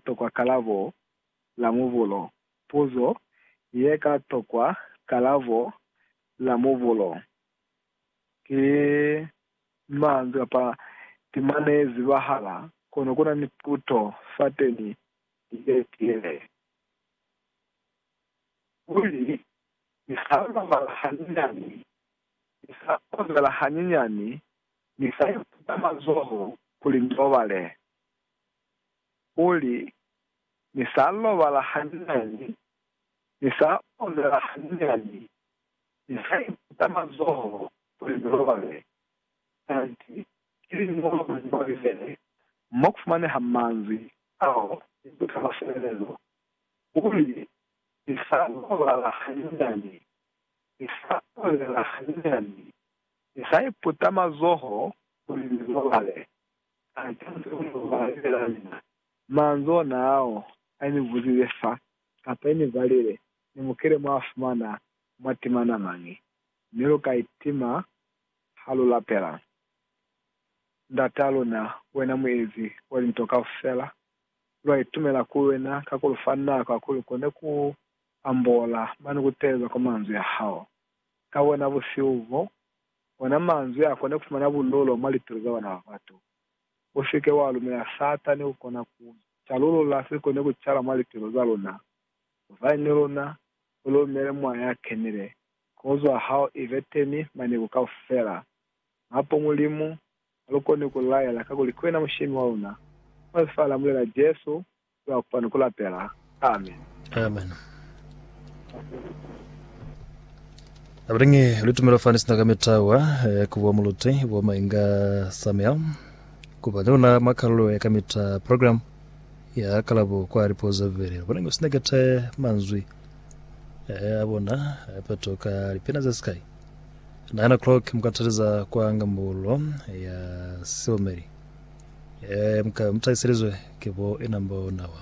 tokwa kalabo la mubulo. Puzo ye ka tokwa kalabo la mubulo ki manzwi kapa timane ye zibahala, kono kuna ni puto fateni ye tiile. Kuli, Ni sa robala hanyinyani, ni sa kozela hanyinyani, ni sa iputa mazoho kuli ni robale. kuli, Ni sa lobala hanyinyani, ni sa onela hanyinyani, ni sa iputa mazoho kuli ni lobale. Kanti ki liñolo mwa Liñolo Lilelele mo ku fumaneha manzwi ao ni buta bwa sebelezo, kuli, Ni sa lobala hanyinyani, ni sa onela hanyinyani, ni sa iputa mazoho kuli ni lobale. Kana Jesu u n'o ba libelela mina? Manzwi ona ao a ni buzile fa, kapa i ni balile, Ni mukile mwa fumana mwa timana mañi, mi lu ka itima ha lu lapela Ndat'a luna, wena Muezi wa linto kaufela. Lwa itumela ku wena ka ku lu fa nako ya kuli lu kone ku ambola mane ku teeleza kwa manzwi a hao. Ka bona busihu bo, Ona manzwi a kona kufumana bundulo mwa lipilu za bana ba batu. Usike wa lumela Satani ku kona ku calulula se koni ku cala mwa lipilu za luna. Zwañi ni luna? U lumele Moya ya Kenile, kozwa hao ibe teni maniku kaufela. Mapo Mulimu ha lu koni ku laela kakuli ki wena Mushemi wa luna. Mwa Lifa la Mulena Jesu, Kuyaupa ni kulapela. Amen. Amen. Abulingi litumelo fani sina ka mitawa ya kuwa muluti wa mainga Samuel kuba ni luna mwa kalulo ya kamita program ya kalabo kwa lipozo vele abulingi sina kete manzwi eh, abona apeto ka lipena za sky 9 o'clock mukataliza kwa ngambulo ya siomeli Ee, muka mutahiselizwe ki bo ina mbo nawa.